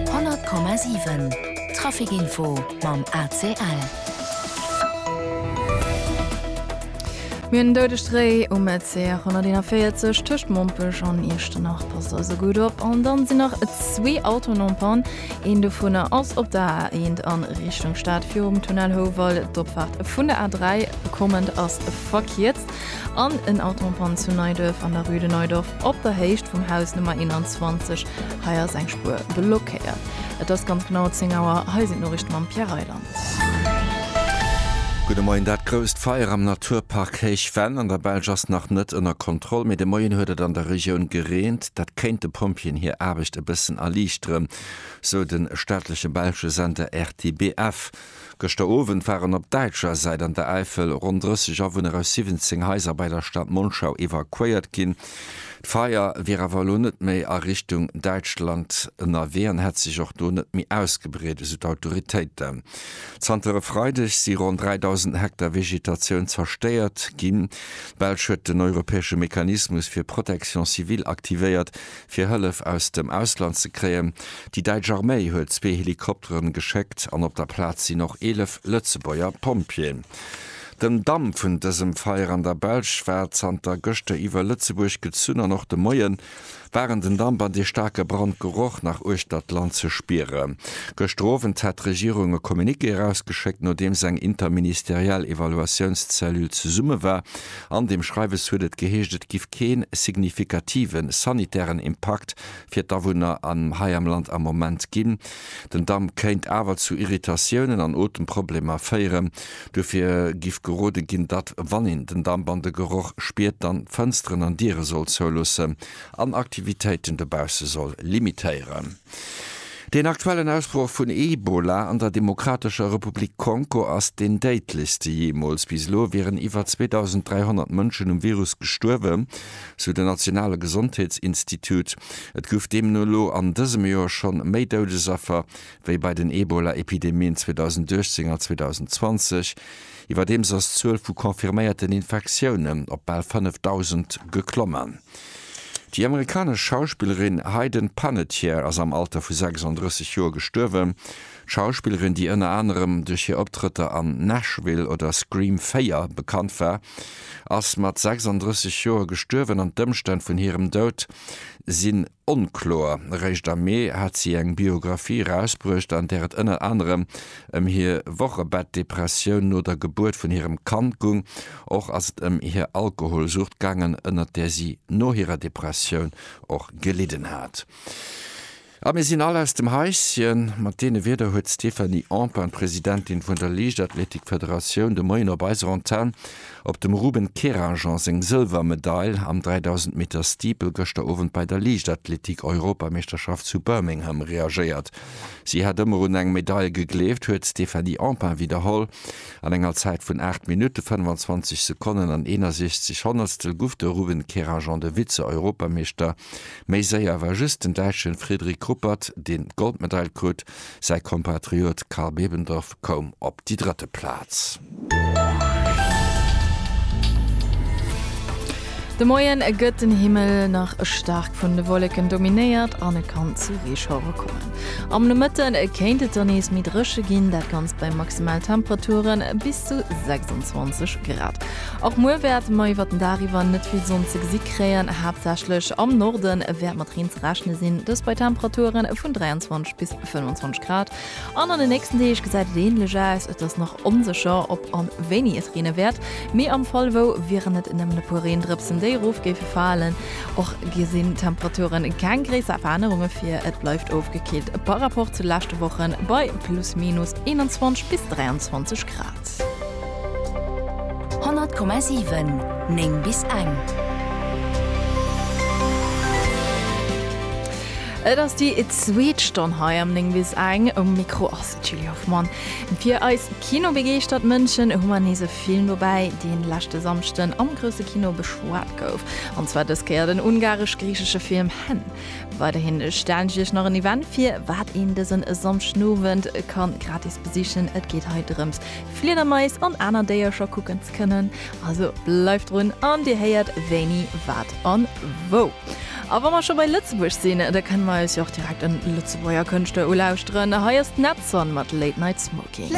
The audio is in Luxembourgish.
100,7 Trafic Info mam ACL. Mir hunn en doudegt Réi um RC 141 tëscht Mompech an Iechternach. Passt also gutt op. An dann sinn nach zwee Autoen en Panne. Een dovunner ass op der A 1 a Richtung Stad virum Tunnel Houwald. D'Opfaart vun der A 3 kommend ass verkierzt. an en Auto en panne zu Neiduerf an der rue de Neudorf op der Héicht vum Haus Nummer 21. Hei ass eng Spuer blockéiert. Et ass ganz genau 10 Auer. Hei sinn d'Noriichte mam Pierre Reyland. Gudde Moien. Dat grousst Feier am Naturpark Héich Venn an der Belsch ass nach net ënner Kontroll, mee de Moien huet et an der Regioun gereent. Dat kéint de Pompjeeën hir Aarbecht e bëssen erliichteren, sou de staatleche belsche Sender RTBF. Gëschter Owend waren op däitscher Säit an der Äifel ronn 30 Awunner aus 17 Haiser bei der Stad Monschau evakuéiert ginn. D'Feier wier awer elo net méi a Richtung Däitschland ënnerwee an hätt sech och do net méi ausgebreet, esou d'Autoritéiten. Zanter e Freideg si ronn 3.000 Hektar Vegetatioun zerstéiert ginn. D'Belsch huet den europäesche Mechanismus fir Protection civile aktivéiert, fir Hëllef aus dem Ausland ze kréien. Déi däitsch Arméi huet zwee Helikopteren geschéckt an op der Plaz sinn och 11 Lëtzebuerger Pompjeeën. Den Damm vun dësem Feier an der Belsch war zanter gëschter iwwer Lëtzebuerg gezunn an och de Moie waren den Damp an dee staarke Brandgeroch nach uechter d'Land ze spieren. Gëschter Owend hat d'Regierung e Communiqué erausgeschéckt, nodeems eng interministeriell Evaluatiounscellule zesumme war. An deem Schreiwes huet et geheescht, et giff keen signifikativen sanitären Impakt fir d'Awunner hei am Land am Moment ginn. Den Damp kéint awer zu Irritatiounen an Otemproblemer féieren. Duerfir giff gerode ginn, datt wann een den Damp an de Geroch spiert, dann d'Fënsteren an Diere soll zouloossen an Aktivitéiten dobausse soll limitéieren. Deen aktuellen Ausbroch vun Ebola an der Demokratescher Republik Kongo ass deen déidlechste jeemools. Bis elo wieren iwwer 2.300 Mënschen um Virus gestuerwen, sou den nationale Gesondheetsinstitut. Et gouf deemno elo an dësem Joer scho méi Doudesaffer wéi bei den Ebola-Epidemien 2018 a 2020. Iwwerdeems ass d'Zuel vu confirméierten Infektiounen op bal 5.000 geklommen. Déi amerikanesch Schauspillerin Hayden Panettiere ass am Alter vu 36 Joer gestuerwen. D'Schauspillerin, déi ënner anerem duerch hir Optrëtter an Nashville oder Scream 4 bekannt war, ass mat 36 Joer gestuerwen an d'Ëmstänn vun hirem Doud sinn onkloer. Eréischt am Mee hat si eng Biographie erausbruecht, an där et ënner anerem ëm hir Wochebettdepressioun no der Gebuert vun hirem Kand gung. Och ass et ëm hir Alkoholsucht gaangen, ënnert där si no hirer Depressioun och gelidden hat. A mir sinn all aus dem Haischen. Mat deene Wierder huet d'Stéphanie Empain, Presidentin vun der Liichtathletikfederatioun, de Moien op eiser Antenn op dem Ruben Kerajan seng Sëlwermedail am 3000 Meter Steeple gëschter Owend bei der Liichtathletik-Europameeschterschaft zu Birmingham reagéiert. Si hätt ëmmer un eng Medail gegleeft, huet d'Stéphanie Empain widderholl. An enger Zäit vun 8 Minutte, 25 Sekonnen an 61 Honnertstel guff de Ruben Kerajan, de Vize-Europameeschter, méi séier. War just den Däitschen Fredrik Ruppert, deen d'Goldmedail krut. Säi Kompatriot Karl Bebendorf koum op déi drëtte Plaz. De Moien gëtt den Himmel nach staark vun de Wolleken dominéiert an et kann zu Reeschauere kommen. Am Nomëtte kéint et dann nees méi dréche ginn, dat Ganzt bei Maximaltemperature bis zu 26 Grad. Och muer wäerte mer iwwert den Dag iwwer net vill Sonn ze gesi kréien, haaptsächlech am Norde wäert mat Reen ze rechne sinn, dëst bei Temperature vun 23 bis 25 Grad. An an den nächsten Deeg gesäit et änlech aus. Et ass nach onsécher, ob an wéini et reene wäert, mee am Fall wou wieren et nëmmen e puer Reendrëpsen, déi erof géife falen. Och gi sinn d'Temperaturen keng gréisser Verännerunge vir, et bleift ofgekillt par Rapport zu leschte Wochen bei plus minus 21 bis 23 Grad. 100,7 9 bis eng. Et ass déi zweet Stonn hei am 9 bis eng. Um Mikro ass d'Julie Hoffmann. Fir eis kinobegeeschtert Mënschen hu mer nees e Film dobäi, deen leschte Samschden am grousse Kino beschwat gouf. An zwar dës Kéier den ungaresch-griichesche Film Hen. Weiderhi stellen ech iech nach en Event vir, wat een dësen Samschdenowend ka gratis besichen. Et geet hei drëms, Fliedermais an aner Déiercher kucken ze kënnen. Also bleift drun an dir héiert wéini, wat an wou. A wa mer scho bei Lëtzebuerg sinn, da kënne mer eis jo och direkt en Lëtzebuerger Kënschtler ulauschteren. Hei ass d'Nedson mat Late Night Smoking.